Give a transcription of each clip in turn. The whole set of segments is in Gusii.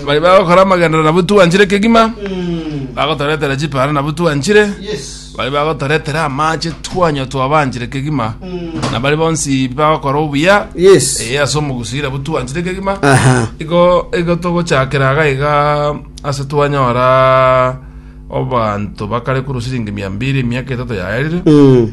bari bagokora amagendero nabo twanchire kegima bagotoretera chipara nabo twanchire Yes. bari bagotoretera amache twanywa twabanchire kegima na bari bonsi bagokora obuya Yes. eye ase omogusire nabo twanchire kegima Aha. igo igo togochakera aga iga ase twanyora obanto bakare kuru siringi mia mbiri emiaka etato yaerire Mm.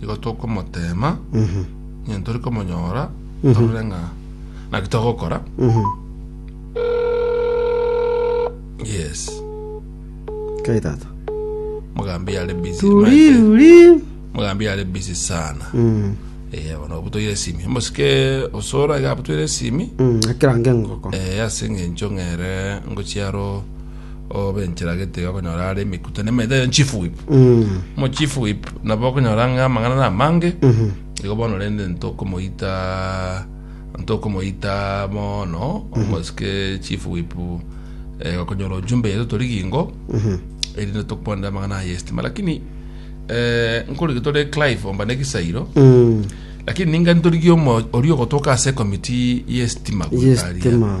nigo tokomoteema ng'a tori komonyora torore ng'a naki togokora yes Kai tata. mogambi yare busy Turi, uri. mogambi yare busy sana Mm. eh bono obutoire esimi mosike osora iga abutoire esimi Mm. Akirange ngoko. eh ase eng'encho ng'ere ngochiaro obe enchera gete iga okonyora are emekutano emete eyo chief whip mo chief whip nabo okonyora ng'a amang'ana na amange igo bono rende ntokomoita ntokomoita bono omosike chief whip eh, okonyora ojumbe yetu tori gingo erinde tokwanera amang'ana aye estima lakini eh, nkorigi tore clive omba ne egesairo lakini ninga ntorigie omo oria ogotoka ase ekomiti y'estima goikaria. Y'estima.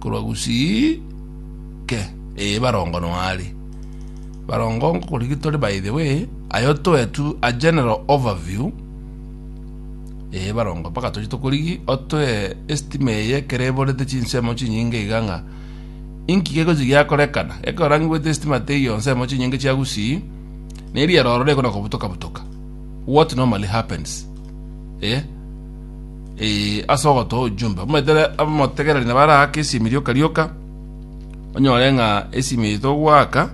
korwa gusii ke ee barongo no are barongo ngokorigia tore by the way ayo toe tu a general overview ee barongo mpaka tochi tokorigi otoe estima eye ekero eborete chinsemo chinyinge iga ng'a inki gegochi giakorekana ekero orangigwete estima teiyo nsemo chinyinge chia gusii neri eroro rekona kobutoka butoka what normally happens eh Ee, ase ogotoa ojumbe omoetere abamotegereri na baraake esiimi rioka-rioka, onyore ng'a esiimi eye togoaka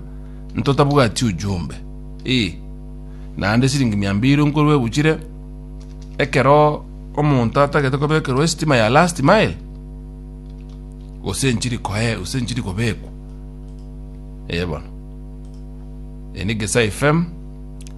ntotabwati ojumbe. Ee, naende esiringi mia mbiri nkorwa ebuchire, ekero omonto atagete kobekerwa esitima ya last mile, gose enchiri koe- gose enchiri kobekwa. Ee bono. Eye negesaifm.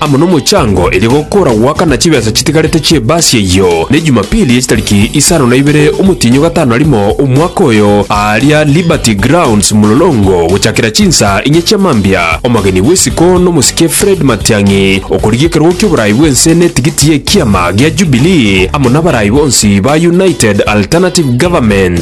amo nomochango eria gokora goaka na chibesa chitigarete chi'ebaasi eyio, ne Jumapili y'echitariki isano na ibere omotienyi o gatano na rimo omwaka oyo, aaria Liberty Grounds Mlolongo, gochakera chinsaa inye chia mambia, omogeni bw'isiko nomosike Fred Matiang'i, okorigia ekerogo ki'oboraai bw'ense na etigiti y'ekiama gia Jubilee, amo n'abarai bonsi ba United Alternative Government.